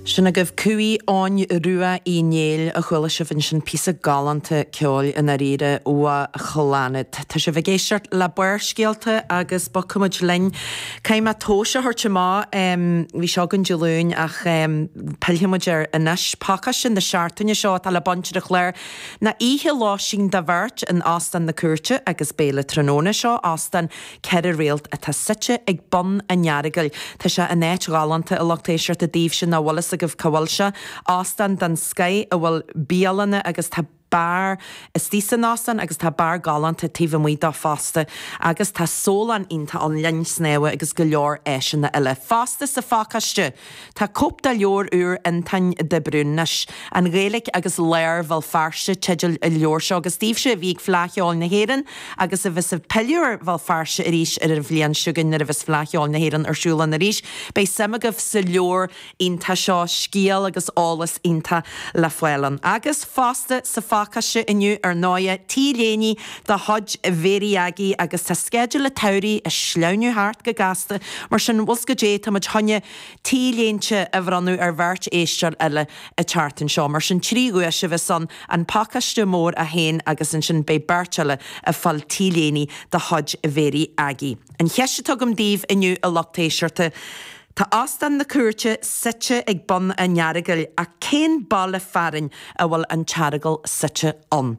Sin agaibh Cumha Eoghain Rua Uí Néill, a chuala sibh ansin, píosa galánta ceoil i ndáiríre ó Chlannad. Tá sibh ag éisteacht le Barrscéalta agus bogfaimid linn. Caithfidh mé tomhas a thabhairt amach, bhí seo againn Dé Luain ach pillfimid air anois. Pacáiste na seachtaine seo atá le baint ar an chlár ná oíche lóistín do bheirt in Óstán na Cúirte agus béile tráthnóna. Seo Óstán ceithre réalt atá suite ag bun an Earagail. Tá sé in áit ghalánta a lucht éisteachta daoibhse nach bhfuil fhios agaibh cá bhfuil sé. Óstán den scoith a bhfuil bialanna agus tá beár istigh san óstán agus tá beár galánta taobh amuigh dó fosta. Agus tá sólann iontach ann, linn snámha agus go leor áiseanna eile fosta sa phacáiste! Tá cóip de leabhar úr Fhionntáin de Brún is an Ghaeilic agus Lár Bhéal Feirste teideal an leabhair seo, agus daoibhse a bhí ag Fleadh Cheoil na hÉireann agus a bheas ag pilleadh ar Bhéal Feirste arís ar an bhliain seo chugainn nuair a bheas Fleadh Cheoil na hÉireann ar siúl ann arís, beidh suim agaibh sa leabhar iontach seo, scéal agus eolas iontach le fáil ann. Agus fosta, sa phacáiste inniu, ar ndóighe, T-léiní de chuid Mhary Aggie agus tá sceideal a' tsamhraidh a' sleamhnú thart go gasta, mar sin, bhfuil fhios caidé, tá muid chun na T-léinte a bhronnadh ar bheirt éisteoir eile an tseachtain seo, mar sin trí dhuais a bheas ann, an pacáiste mór a haon agus ansin beidh beirt eile a' fáil T-léiní de chuid Mhary Aggie. An cheist atá agam daoibh inniu a lucht éisteachta, tá Óstán na Cúirte suite ag bun a' Earagail ach cén baile fearainn a bhfuil an tEaragal suite ann?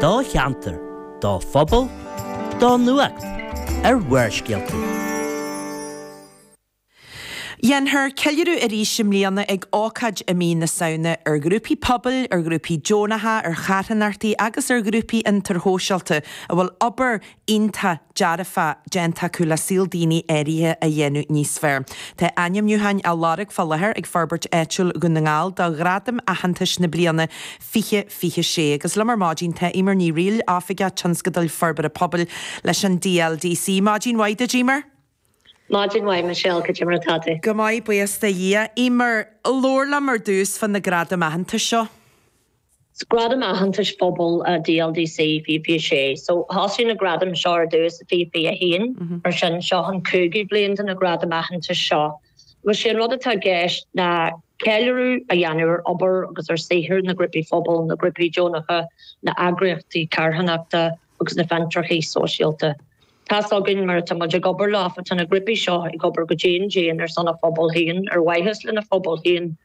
do cheantar, do phobal, do nuacht, ar Bharrscéalta. Dhéanfar ceiliúradh arís i mbliana ag ócáid i mí na Samhna ar ghrúpaí pobail, ar ghrúpaí deonacha, ar charthanachtaí agus ar ghrúpaí fhiontair shóisialta a bhfuil obair iontach dearfach déanta acu le saol daoine áirithe a dhéanamh níos fearr. Tá ainmniúcháin á lorg fá láthair ag Forbairt Áitiúil Dhún na nGall do ghradaim aitheantais na bliana 2026 agus liom ar maidin tá Emer Ní Fhríl, Oifigeach Tionscadail Forbartha Pobail leis an DLDC. Maidin mhaith duit, Emer! Maidin mhaith Michelle, caidé mar atá tú? Go maith, buíochas do Dhia. Emer, labhair liom ar dtús fá na gradaim aitheantais seo. Gradam aitheantais phobail DLDC, 2026. So thosaigh na gradaim seo ar dtús i 2021, mar sin seo an cúigiú bliain de na gradaim aitheantais seo. Agus sé an rud atá i gceist ná ceiliúradh a dhéanamh ar obair agus ar saothar na grúpaí phobail, na grúpaí deonacha, na n-eagraíochtaí carthanachta agus na fiontraíochtaí sóisialta. Tá's againn, mar tá muid ag obair leofa, tá na grúpaí seo ag obair go dian dian ar son a bpobal féin, ar mhaitheas lena phobal féin,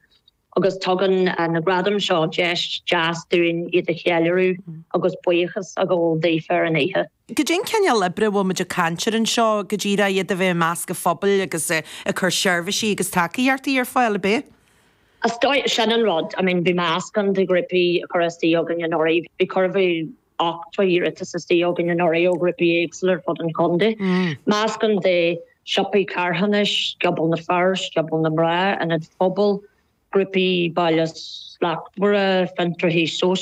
Agus tugann na gradaim seo deis deas dúinn iad a cheiliúradh agus buíochas a ghabháil daofa ar an oíche. Cad é an cineál oibre a bhfuil muid ag caint ar anseo go díreach, iad a bheith i measc an phobail agus ag cur seirbhísí agus tacaíochtaí ar fáil, ab é? Sin an rud. I mean, bhí meascán de ghrúpaí a chuir isteach chugainn anuraidh. Bhí, cuireadh ochtó iarratas isteach chugainn anuraidh ó ghrúpaí éagsúla ar fud an chontae, meascán de shiopaí carthanais, scioból na bhfear, scioból na mná, ionaid phobail, grúpaí baile slachtmhara, fiontraithe sóisialta,